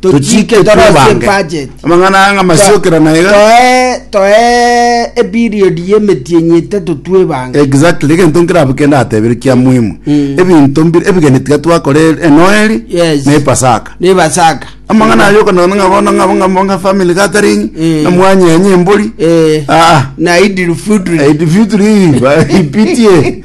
Tochiike torosie budget. Amang'ana aya ng'amasiokera na iga. Toe toe eperiod y'emetienyi etato twebange. Exactly, egento nkere abwo kende atebire kia muhimu. Ebinto mbire ebigeni tiga twakora e- enoeli Yes. na epasaka. Ne basaka. Amang'ana ayo okanakana ng'a bono ng'a ng'a ng'a family gathering, Eh. ng'a mwanyenye embori. Eh. Ah, ah. Na idil fitri. Eh, the future hii, ba- ipitie.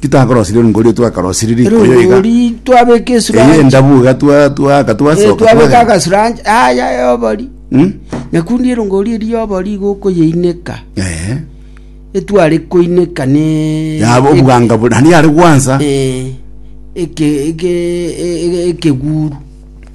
Titakoroseria rungori oyo twakarosiri riko oyo iga. rungori twabeka Eye esuranchi endabu iga twa twaaka Eh, twasoka twabeka twagenda. agasuranchi aya yobori Hmm? nyakundi erongori eri yobori iga okoyeineka Eh. etware koineka ne Yaba obwanga buna. Hani yare gwansa. Eh, eke eke e- e- ekeguru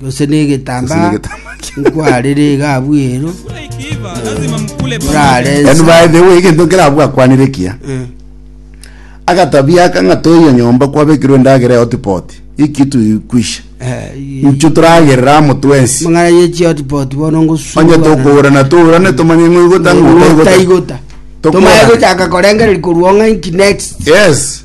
gose negetambaa nkwarere egabu ero orarense And by the way, egento kerabwo akwanire ekiya Eh, agatabia aka ng'a toiyo nyomba kwabekirwe endagera ya hotpot iki tuikwisha eh, i- inchu turagerera amo twensi mang'ana ye chiotipoti bono onye ngosuana tokourana tourane tomanye ng'oigota ng'otaigota ng'otaigota Tokorana. tomaye gochaka korengereria korwa ong'a inki next yes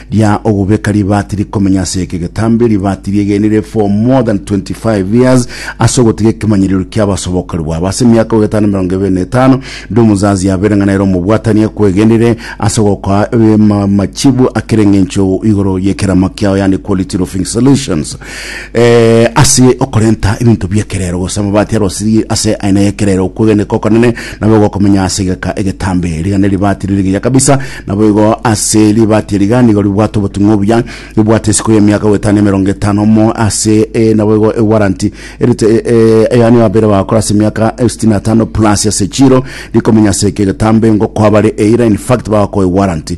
Ria ogobeka ribaati rikomenya ase eke getambe, ribaati riegenire for more than 25 years ase ogotiga ekemanyererio kia abasobokori bwabo. Ase emiaka ogoeta na emerongo ebere na etano, ndi omozazi yabeire ng'a nere omobwatani ekwegenire ase ogokoa eh, ma- machibu akere engencho igoro yekerama kiao, yani quality roofing solutions. eh, ase okorenta ebinto biekerero gose amabati arosiri ase aina yekerero okwegeneka okonene nabo gokomenya ase egeka egetambe rigane ribati ririgiya kabisa nabo igo ase ribati eriga nigo ribwate obotung'u obuya ribwate isiko y'emiaka goetana emerongo etano mo ase eh, nabo igo ewaranti erite eh, eh, eyani abere bakora ase emiaka eh, sitini na tano plus ase chiro rikomenya ase eke egetambe ngo kwabare eira in fact bagokoe waranti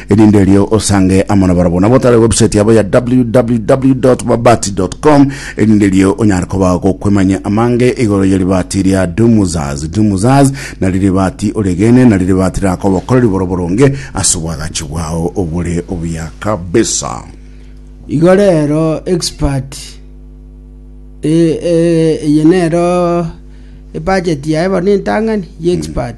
Erinde erio osange amo nabarabwo nabo tare website yabo ya www.mabati.com erinde erio onyare koba gokwemanya amange igoro ye ribati ria Dumuzaz. Dumuzaz nari ribati oregene nari ribati rirakobokoreri boro boronge ase obwagachi bwao obore obuya kabisa. Igo rero expert eh, eh, eye nero ebudget yaye bono entang'ani ye expert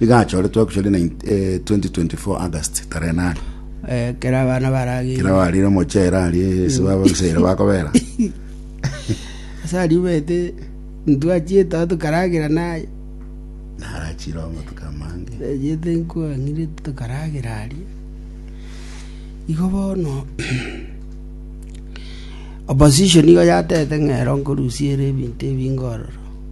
Iga achoretwe Actually, 2024 August tarehe nane Eh, kera abana baragenda kera barire mochera arie ase baba gisere bakobera ase aria omanyete ntwachiete aho tokaragera naye narachire omotuka amange ejete nkwang'ire tokaragera aria igo bono opposition igo yatete ng'ero nkorusiere ebinto ebinge ororo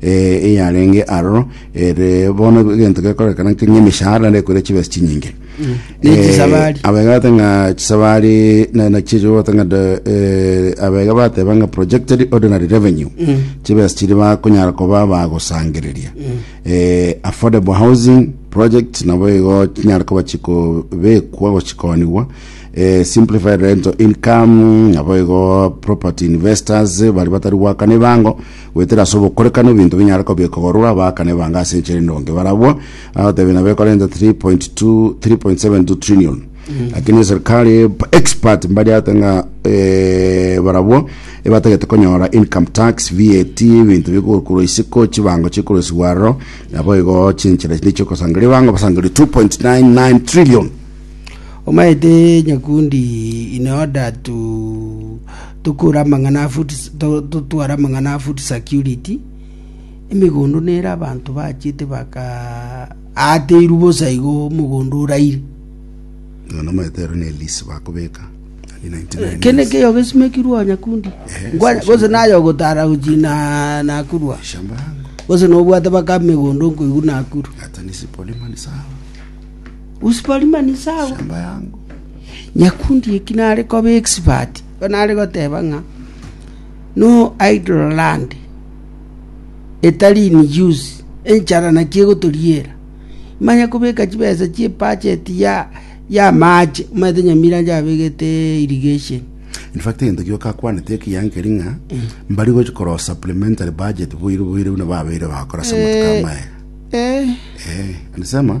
eh, eyarenge aroro ere bono egento gekorekana nke ng'emeshahara naende ekorire chibesa chinyinge Ne Eh, chisabari. abega bate ng'a chisabari na- na chicho bate ng'a de- eh, abega bateba ng'a projected ordinary revenue chibesa chiri bakonyara koba bagosangereria Eh, affordable housing project nabo igo chinyara koba chikobekwa gochikonigwa eh, simplified rental income nabo igo property investors bari batari gwakana ebango Goetera ase obokorekano ebinto binyare kobikorwa abaakani ebange ase enchera endonge barabwo agoteebia nabo ekore renta 3.2 3.72 trillion lakini eserikali expert mbariate ng'a eh, barabwo ebatagete konyora income tax VAT ebinto bikokorwa isiko chibango chikorosigwa aroro nabo igo chinchera chinde chiokosangeria bango basangerie 2.99 trillion Omaete nyakundi in order to Tokore amang'ana a food, totware amang'ana a food security, emegondo nere abanto bachete baka ateirwe bosa igo omogondo oraire. Ng'a nomaete ero ne lease bakobeka. Ni 99 Kende years. keyo gesimekirwe onya kundi. Eh, Ngwa- session. Gose nayo ogotara gochina nakurwa. Shamba yangu. Gose nobwate baka megondo nkoigwa nakuru. Hata nisipolima ni sawa. Nyakundi eki nare koba expert, igo nare goteba ng'a no idle land etari in use, enchara naki egotoriera. Manye kobeka chibesa chie budget ya y'amache, omanyete Nyamira inche abegete irrigation. In fact egento gioka akwanete ekiya nkeri ng'a mbari gochi koroo supplementary budget boire boire buna babeire bagokora ase amatuko amaye. Alisema.